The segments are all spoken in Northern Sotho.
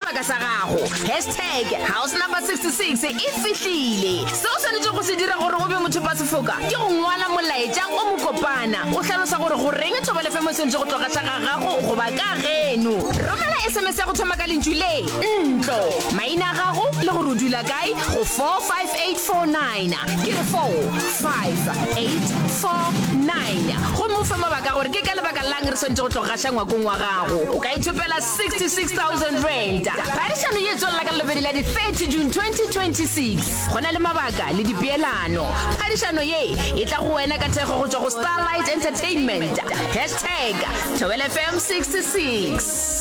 sebaka sa gago. Hashtag House Number 66 e fihlile. Se o swanetšego go se dira gore o be mothopasefoka ke go ngwala molaetša o mokopana o hlalosa gore goreng thobalefemo e swanetše go tloga tla ga gago goba ka geno. Romela sms ya go thoma ka lentšu le, ntlo, maina a gago le gore o dula kae go 45849, ke re 45849, gomme o fe mabaka a gore ke ka lebaka la'ng re swanetše go tloga gaša ngwakong wa gago. O ka ithopela R66,000. Phadišano ye e tswelela ka Labobedi la di 30 June 2026. Go na le mabaka le dipeelano. Phadišano ye e tla go wena ka thekgo go tšwa go Starlight Entertainment. Hashtag Thobela FM 66.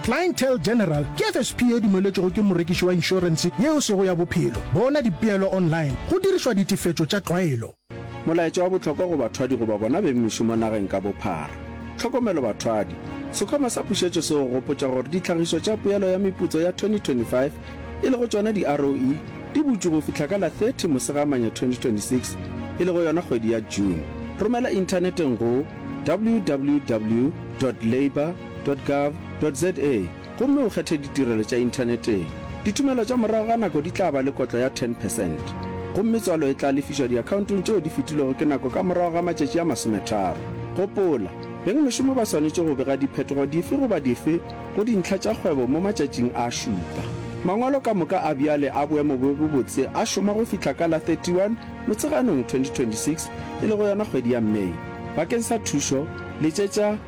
Clientele General ke FSP e dumeletšwego ke morekiši wa inšorense ye o sego ya bophelo. Bona dipeelo online go dirišwa ditefetšo tša tlwaelo. Molaetša wa bohlokwa go bathwadi goba bona beng mešomo nageng ka bophara. Tlhokomelo bathwadi! Sekhwama sa pušetšo se go gopotša gore ditlhagišo tša poelo ya meputso ya 2025, e lego tšona di-ROE, di butšwe go fihla ka la 30 Mosegamanya 2026, e lego yona kgwedi ya June. Romela inthaneteng go www dot labour www.gov.za gomme o kgethe ditirelo tša inthaneteng. Ditumelo tša morago ga nako di tla ba le kotlo ya ten percent, gomme tswalo e tla lefišwa diakhaontong tšeo di fetilwego ke nako ka morago ga matšatši a masometharo. Gopola, beng mešomo ba swanetše go bega diphetogo dife goba dife go dintlha tša kgwebo mo matšatšing a šupa. Mangwalo ka moka a bjale a boemo bjo bo botse a šoma go fihla ka la 31 Motsheganong 2026, e lego yona kgwedi ya May. Bakeng sa thušo, letšetša.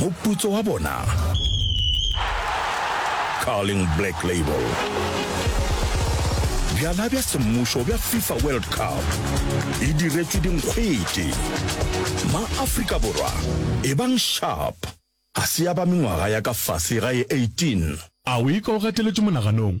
Moputso wa bona, Carling Black Label. Bjala bja semmušo bja FIFA World Cup e diretšwe dinkgwete. Ma-Afrika Borwa e bang sharp. A se ya ba mengwaga ya ka fase ga ye 18. A o e ka o gateletšwe monaganong?